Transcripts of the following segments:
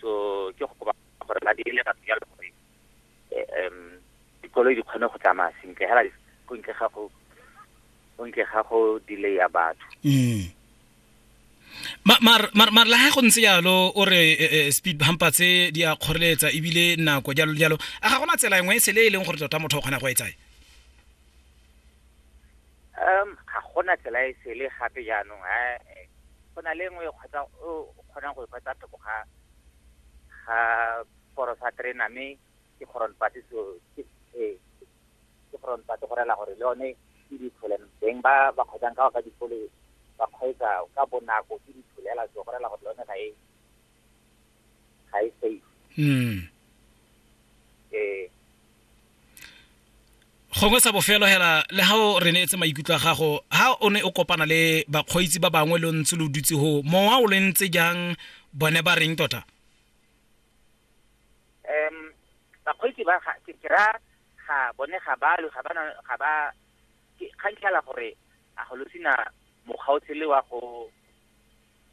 so ke go kopa gore ba dirile batho jalo gore um dikoloi di kgone go tsamaya sentle hela go ntle ga go go ntle ga go delaya batho mm. mare la ga go ntse jalo o re eh, eh, speed bumper tse di a kgoreletsa ebile nako jalo jalo a ga gona tsela engwe e sele e leng gore tota motho o kgona go etsae Um, ga gona tsela e sele gape jaanong ha eh, go na le nngwe e kgotsa o o kgonang go e kgwetsa thoko ga ga koro sa terena mme ke kgoron pati so ke eh, ke kgoron pati go rela gore le yone ke ditholen beng ba ba kgwetsang ka ba dikolo ba kgweetsa ka bonako ke ditholela so go rela gore le yone ga e ga e safe mm. eh gongwe sa bofelo hela le ga o re neetse maikutlo a gago ha o ne o kopana le bakgweetsi ba bangwe lo ntse lo dutse go mowa o le ntse jang bone ba reng tota um bakgweetsi ba ke kry-a ga bone ga balo ga bana ga ba kgang tlhala gore a go lo sena mokgaotshele wa go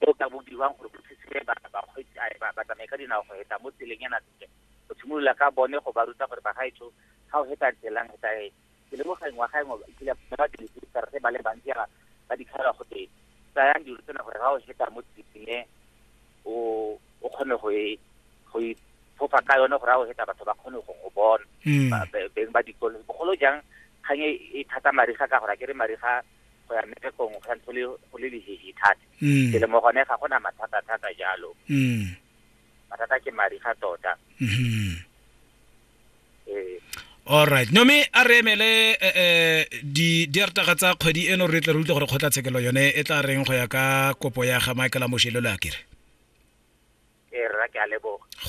Go ka bo dirwang gore go thusiwe ba bakgweetsi a ba ba tsamaye ka dinao go heta mo tseleng yana sentle. Go tshimolola ka bone go ba ruta gore bagaetsho ga o heta tselang heta e ke lemoga ngwaga engwe e kile ba ba dirise ditsara tse ba le bantsi yana ba di kgala go teng. Tsayang dilo tsena gore ga o heta mo tseleng e o o kgone go e go e fofa ka yone gore ga o heta batho ba kgone go go bona. Beng ba dikolo bogolo jang kgang e thata mariga ka gore a ke re mariga go ya mmerekong go santse go le lehehi thata mm. ke le mo gone ga go na mathata thata jalo mm. mathata ke madi ga tota mm-hmm. ee. alright nome a re emele eh, eh, diartaga tsa kgwedi eno re tle re utlwe gore kgotlatshekelo yone e tla reng go ya ka kopo ya ga michael amošelelo a kere ee,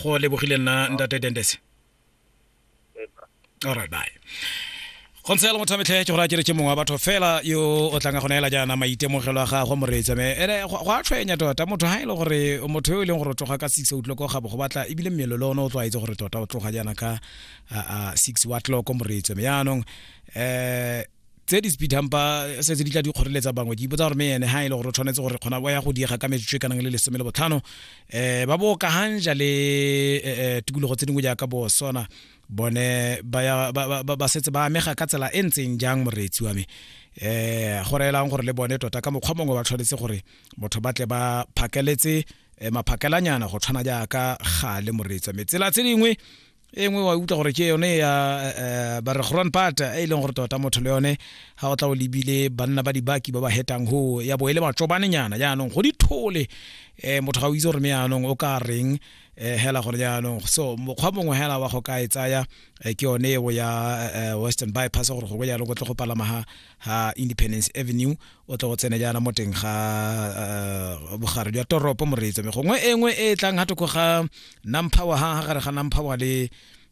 go lebogile nna ntate dendese all right bye go ntse le motho a metlhee ke gore a kereke mongwe wa batho fela yo o tlanga go neela jaana maitemogelo a gagwe moreetsa me ene go a tshwenya tota motho ga e le gore motho yo e leng gore o tloga ka six o'clock o gabo go batla ebile mmelo le one o tlwaetse gore tota o tloga jaana ka six wa tloko moreetsa me yaanong um tse di speed hampa se tse di tla di kgoreletsa bangwe ke ipotsa gore me ene ha e le gore o tshwanetse gore kgona wa ya go diega ka metsotso e kanang le lesome le botlhano um ba bo ka hanja le um tikologo tse dingwe jaaka bo sona bone ba setse ba amega ka tsela e ntseng jang moreetsi wa me um go reelang gore le bone tota ka mokgwa mongwe ba tshwanetse gore motho ba tle ba phakeletse maphakelanyana go tshwana jaaka gale moreetsi wa me tsela tse dingwe e nngwe wa utlwa gore ke yone ya eh, ba re gron pata e e leng gore tota motho le yone ga o tla o lebile banna ba dibaki ba ba hetang ho ya bo e le matsobanenyana jaanong go dithole um motho ga o itse gore me jaanong o ka reng um hela gore jaanong so mokgwa mongwe hela wa go ka e tsaya eh, ke yone eo ya eh, western bypass gore gongwe jaanong o tle go palama ga ha independence avenue o tla go tsene jaana mo teng ga uh, bogare jwa toropo moreetso me gongwe e nngwe e tlang ga toko ga nampower ha gare ga nampower le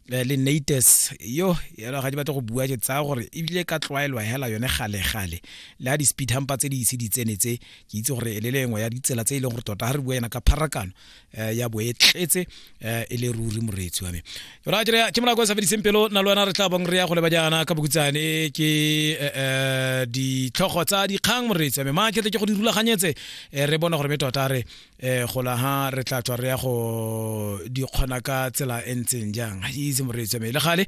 eh, le nates yo yalo ga di batle go bua ke tsaya gore ebile ka tlwaelwa hela yone gale-gale le ha di-speed hampa tse di ise di tsene tse ke itse gore e le lengwe ya ditsela tse e leng gore tota ga re bua yena ka pharakano eh, ya bo e tletse eh, e le ruri moreetsi wa me yona ke ke mona kwa sa fediseng pelo na le wena re tla bong re ya go leba jaana ka bokutsane ke eh, eh, ditlhogo tsa dikgang moreetsi wa me ma ketle ke go di rulaganyetse eh, re bona gore me tota re eh, gola ha re tla tswa re ya go di kgona ka tsela e ntseng jang ga itse moreetsi wa me le gale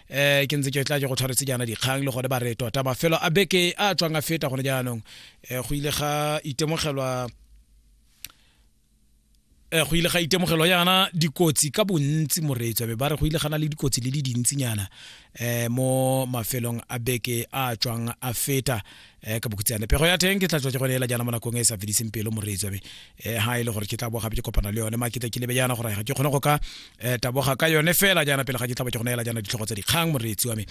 eh ke ntse ke tla ke go tshwaretse jaana dikgang le gone ba re tota mafelo a beke a tswang a feta gone jaanong eh, go ile ga itemogelwa eh, go ile ga itemogelo yana dikotsi ka bontsi moreetswa be ba re go ile gana le dikotsi le di dintsinyana um mo mafelong a beke a tswang a feta um ka bokutsane pego ya teng ke tla tswa ke gone ela jana mo nakong e sa fediseng pelo moreetswa be um ga e le gore ke tla bogape ke kopana le yone maketla ke lebe yana gore ga ke kgone go ka eh taboga ka yone fela jaana pele ga ke tlhaba ke go neela jaana ditlhogo tsa dikgang moreetsi wa me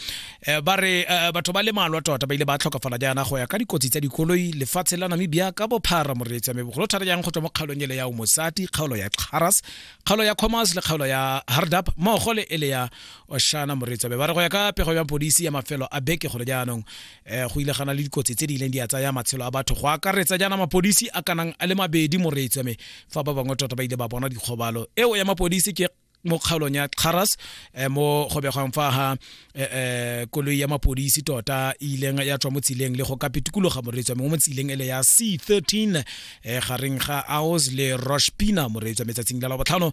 eh ba re eh, batho ba le malwa tota ba ile ba tlhokafala jaana go ya ka dikotsi tsa dikoloi lefatshe la namibia ka bophara moreetsi wa me bogolo thata jang go tswa mo kgaolong ele ya omosati kgaolo ya xaras kgaolo ya commerce le kgaolo ya hardap mmogo le ele ya oshana moreetsi wa me ba re go ya ka pego ya polisi ya mafelo a beke gole jaanong eh, go ile gana le dikotsi tse di ileng di a tsaya matshelo a batho go akaretsa jaana mapodisi a kanang a le mabedi moreetswa me fa ba bangwe tota ba ile ba bona dikgobalo eo ya mapodisi ke mo kgaolong ya Xaras eh, mo go begwang fa ha eh, eh, koloi ya mapodisi tota e ileng ya tswa mo tsileng le go ka pitikologa moreetswa mo tsileng ele ya C13 gareng ga Aos le Roshpina moreetswa metsatsing la la botlhano